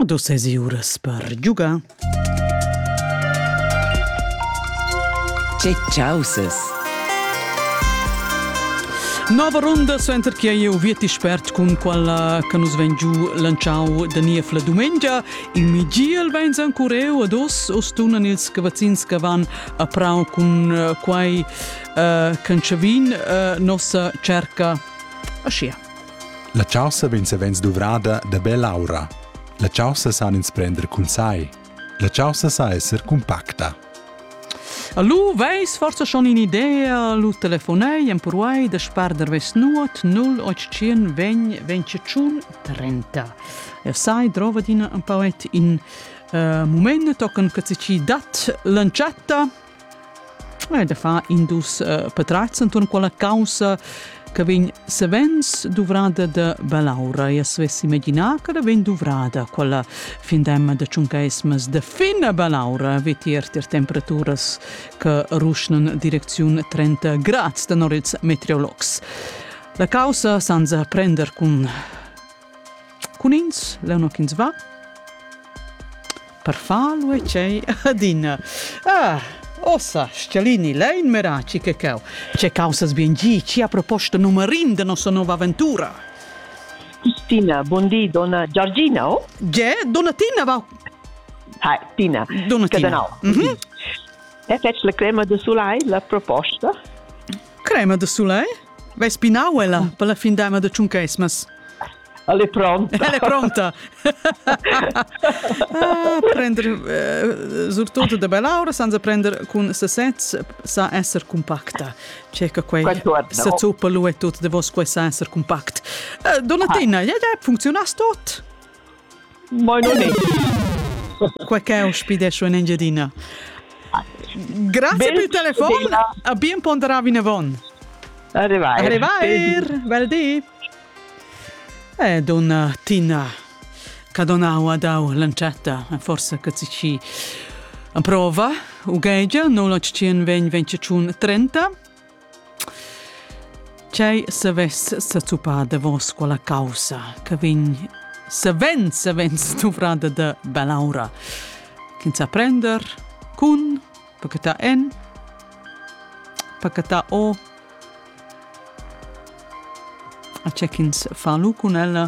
Do sesi uras per giugar. Che causes! Nova ronda suenter che eu vi ti spert cun quella che nus vegn giu lanciau da Nief la dumengia. Il Migiel vegns ancureu ad os o stunan ils cavazzins che van a prau cun eh, quai uh, eh, cancevin uh, nossa cerca. Aschia. La chaussa vegn savens duvrada da bell'aura. La chaussa san ins prender cun sai. La chaussa sa esser cumpacta. Allo, veis forse schon in idea, lu telefonei en purwai da sparder ves nuot 0800 20 25 30. E sai drova dina un pauet in uh, moment tochen che ci dat lancietta e da far in dus uh, patrats intorn quella causa che vegn savens duvrada da belaura. E svessi imaginar che da vegn duvrada quella findemma da tschuncaismas da fina belaura vetier tir temperaturas che ruschnan direcziun 30 grad da norits meteorologs. La causa senza prender cun Cun ins, leu no ch'ins va. Per far lu e tgei adina. Ah, ossa, Schialini, lei in meraci che cau. Ce causas bien gi, ci a proposta numerin de nossa nova avventura. Tina, buondì, donna Giorgina, oh? Ge, donna Tina va. Hi, Tina. Donna Tina. Mm -hmm. E fetg la crema de sulai, la proposta. Crema de sulai? Vai spinau ella per la fin dama da tschuncaismas? Ella è pronta. Ella è pronta. ah, prender eh, surtut da belaura senza prender cun sasez sa essere compacta. Cerca quei sa zuppa lu e tut de vos quei sa essere compact. Eh, Donna ah. Tina, ja, ja, funziona tot? Mo non è. Qua che ospidescio in Engiadina. Grazie per il telefono. A bien ponderavi nevon. Arrivai. Arrivai. Bel di. E donna Tina che donau ad au lancetta, forse che si ci prova, u gegia, 0800 20 30 Tgei savess sezuppar davos quella caussa che vegn savens, savens duvrada da bell'aura ch'ins sa prender cun pachettar en, pachettar o a tge ch'ins fa lu cun ella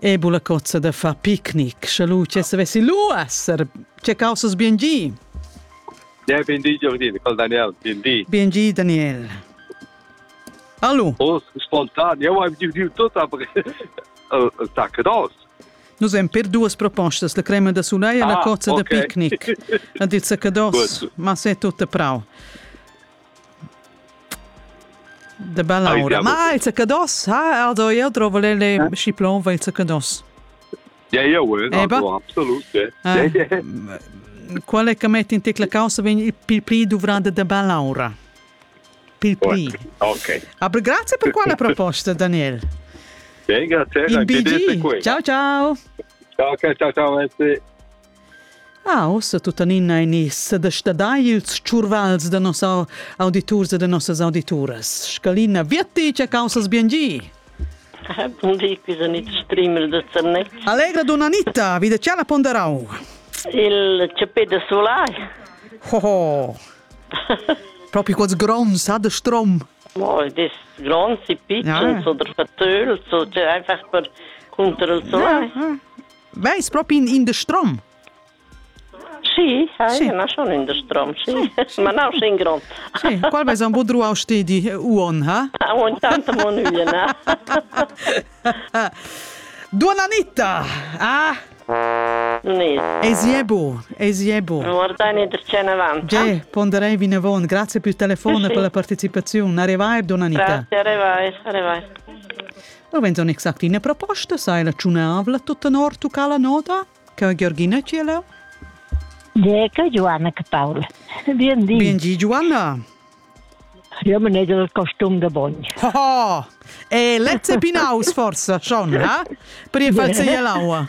E bula cozza da far picnic, sche lu che savessi lu esser. Che causas bien gi. Ja, ben di Giorgina, col Daniel, bien di. Bien gi Daniel. Hallo. Oh, spontan, eu am dividiu tot ab tac dos. Nus hem per duas propostas, la crema da suleia e ah, la cozza okay. da picnic. Ha dit sacados, ma se tutta prau. De bell'aura. Ma il zaccados, ha Aldo io trovo le schi plonva il zaccados. Ja, ja, Aldo, absolut. Qual è che metti in te la causa vegni più pli dovrande de bell'aura? Più pli. Ok. Aber grazie per quella proposta, Daniel. Beh, grazie. In BG. Ciao, ciao. Ciao, ciao, ciao, merci. Ah, ussa tuttenina ein i's sedestadai ils tschurvals da nossa auditurs e da nossas audituras. Scalina Vietti, che caussas bien gi! Bon di, qui Anita Strimmel de Zernez. Allegra donna Anita, vi de c'è la ponderau? Il cepè de solai. Oh, oh. Proprio quels grons, ha de strom. Oh, des grons, i pitschens ja. oder vertölt, so, cioè einfach per contro il solai. Ja, ja. Veis propi in, in de strom? Sì, eh, sì. ma schon in de strom, sì. sì, sì. ma no in grond. sì, qual veis un bod ruau stedi uon, ha? Ha, uon tanta mon uena. Donna Anita! Ah? Ni. Esiebo, esiebo. Guarda ne dercene avanti. Ge, ponderei vinavon. Grazie per il telefono e per la partecipazione. Arrivai, donna Anita. Grazie, arrivai, arrivai. Davent on exact ina proposta, sa è la tschunavla tutta nor tucà la nota? Che Georgina Ciela? Geca Joanna che Paul. Bien di. Bien di Joanna. Io me ne del costum de bogn. Oh, e Lezze Pinaus forse schon, ha? Per je far se l'aua.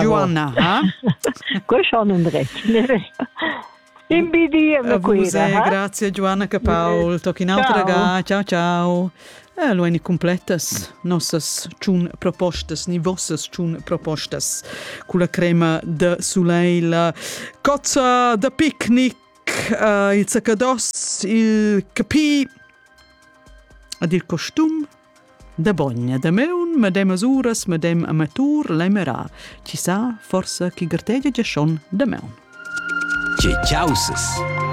Joanna ha? Questo non drecce. Imbidia me quira. Grazie Joanna che Paul, tocchi un'altra ga. Ciao ciao. Eh, lo ein completas nossas tschun propostas, ni vossas tschun propostas con la crema de soleil, cozza de picnic, uh, il zaccados, il capì, ad il costum, Da bogn e damaun medemas uras medem amatur l'emera, chi sa forsa chi gartegia giaschon damaun. Che chausas!